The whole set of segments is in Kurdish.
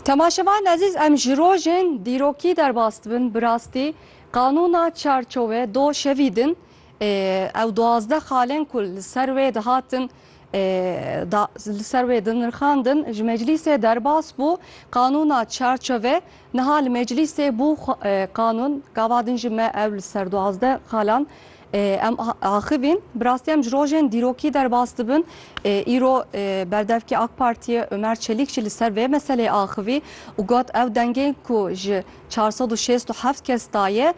Temaşevan ezîz em ji rojên dîrokî derbas dibin bi rastî qanûna çarçove do şevî din ew duwazdeh xalên ku li ser wê dihatin li ser wê dinirxandin ji meclîsê derbas bû qanûna çarçove niha li meclîsê bû qanûn gava din ji me ew li ser duwazdeh xalan Em axivîn, bi rastî em ji rojên dîrokî derbas dibin. Îro berdevkê AK Partiyê Omer Çelîk jî li ser vê meseleyê axivî û got, Ew dengên ku ji çar sed û şêst û heft kes da ye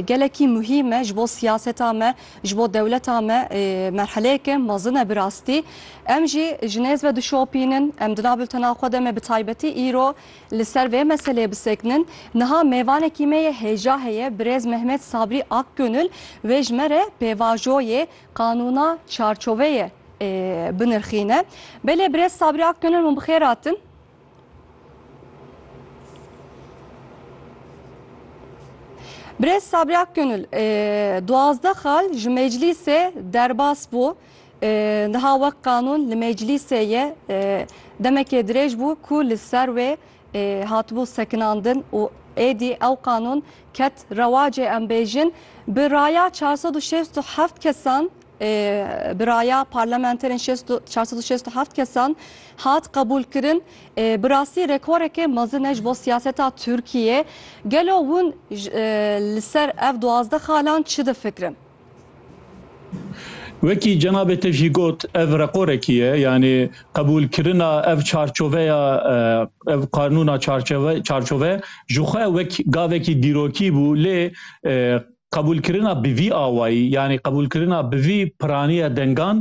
gelekî muhîm e ji bo siyaseta me, ji bo dewleta me merheleyeke mezin e bi rastî. Em jî ji nêz ve dişopînin, em di nav bultena xwe de me bi taybetî îro, Li ser vê meseleyê bisekinin, niha mêvanekî me yê hêja heye birêz Mehmet Sabrî Akgönül wê ji me re pêvajoyê qanûna çarçoveyê binirxîne. Belê birêz Sabrî Akgönül hûn bi xêr hatin. Birêz Sabrî Akgönül, duwazdeh xal ji meclîsê derbas bû. Niha wek qanûn li meclîsê ye demekê dirêj bû ku li ser wê hatibû sekinandin û êdî ew qanûn ket rewacê em bêjin bi raya çar sed û şêst û heft kesan bi raya parlamenterên çar sed û şêst û heft kesan hat qebûlkirin bi rastî rekoreke mezin e ji bo siyaseta Tirkiyê gelo hûn li ser ev duwazdeh xalan çi difikirin? Wekî cenabê te jî got ev reqorekî ye yanî qebûlkirina ev çarçoveya ev qanûna çarçove ji xwe wek gavekî dîrokî bû lê qebûlkirina bi vî awayî yanî qebûlkirina bi vî piraniya dengan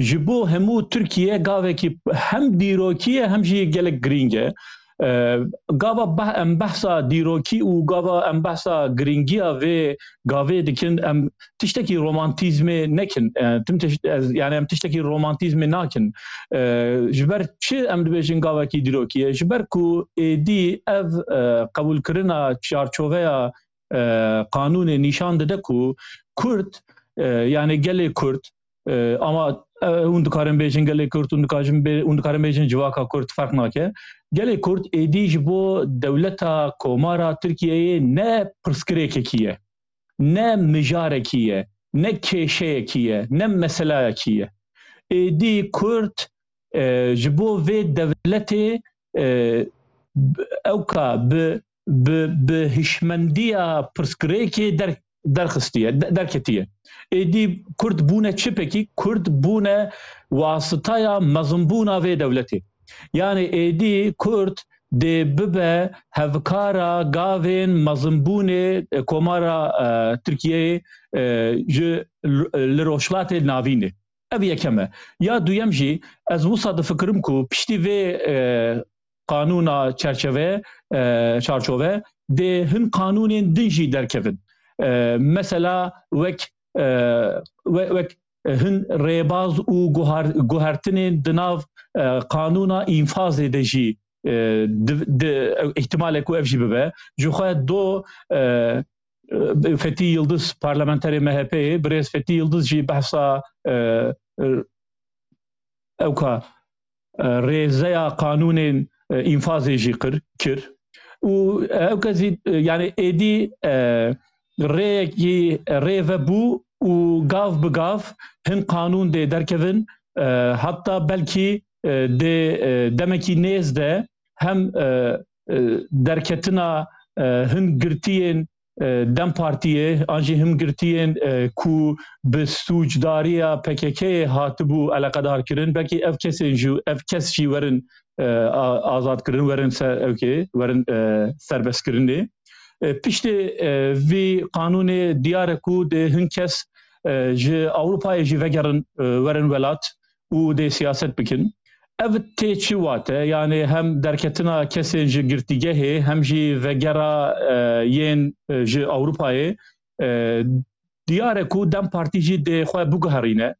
ji bo hemû Tirkiye gavekî hem dîrokî ye hem jî gelek girîng e. Gava em behsa dîrokî û gava em behsa girîngiya vê gavê dikin em tiştekî romantîzmê nekin tim tişt yani em tiştekî romantîzmê nakin ji ber çi em dibêjin gavekî dîrokî ye ji ber ku êdî ev qebûlkirina çarçoveya qanûnê nîşan dide ku Kurd yanê gelê Kurd ama hûn dikarin bêjin gelê Kurd hûn dikajin hûn dikarin bêjin civaka Kurd ferq nake. Gelê Kurd êdî ji bo dewleta komara Tirkiyeyê ne pirsgirêkekî ye, ne mijarekî ye, ne kêşeyekî ye, ne meselayekî ye. Êdî Kurd ji bo vê dewletê ewka bi bi bi hişmendiya pirsgirêkê der derxistiye derketiye êdî kurd bûne çipekî kurd bûne wasitaya mezimbûna vê dewletê yani êdî kurd dê bibe hevkara gavên mezimbûnê e, komara e, tirkiyeyê e, ji li rojhilatê navînê ev yekeme ya duyem jî ez wisa difikirim ku piştî vê qanûna çerçeve çarçove dê hin qanûnên din jî derkevin. Mesela wek wek hin rêbaz û guhertinên di nav qanûna înfazê de jî ihtimalek ku ev jî bibe. Jixwe do Fetî Yildiz parlamenterê MHP'ê birêz Fetî Yildiz jî behsa ew ka rêzeya qanûnên înfazê jî qir kir û ew kesî yani êdî rêyekî rêve bû û gav bi gav hin qanûn dê derkevin heta belkî dê demekî nêz de hem derketina hin girtiyên Dem Partiyê an jî himgirtiyên ku bi sûcdariya PKK'ê hatibû eleqedarkirin belkî ev kesên jî ev kes jî werin azadkirin werin ser ewkê werin serbestkirinê. Piştê vî qanûnê diyar e ku dê hin kes ji Ewropayê jî vegerin werin welat û dê siyaset bikin. Ev tê çi wate yanê hem derketina kesên ji girtîgehê hem jî vegera yên ji Ewropayê diyare ku dem partî jî dê xwe biguherîne.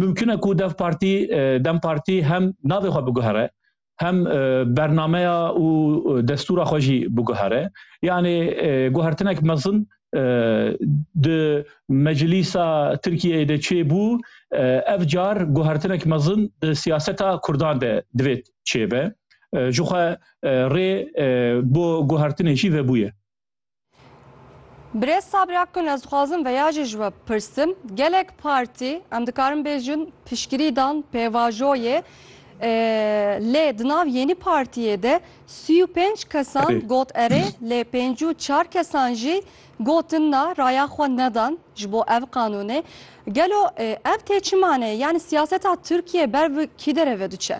Mumkin e ku dev partî dem partî hem navê xwe biguhere. hem bernameya û destûra xwe jî biguhere yanê guhertinek mezin di meclîsa Tirkiyeyê de çêbû ev car guhertinek mezin di siyaseta Kurdan de divêt çêbe jixwe rê bo guhertinê jî vebûye. Birêz Sabir Akgün ez dixwazim veya jî ji we pirsim gelek partî em dikarin bêjin piştgirî dan pêvajoyê lê di nav yênî partiyê de sî û pênc kesan got erê lê pêncî û çar kesan jî gotin na raya xwe nedan ji bo ev qanûnê gelo ev tê çi maneyê yanî siyaseta Tirkiyê ber bi kî derê ve diçe?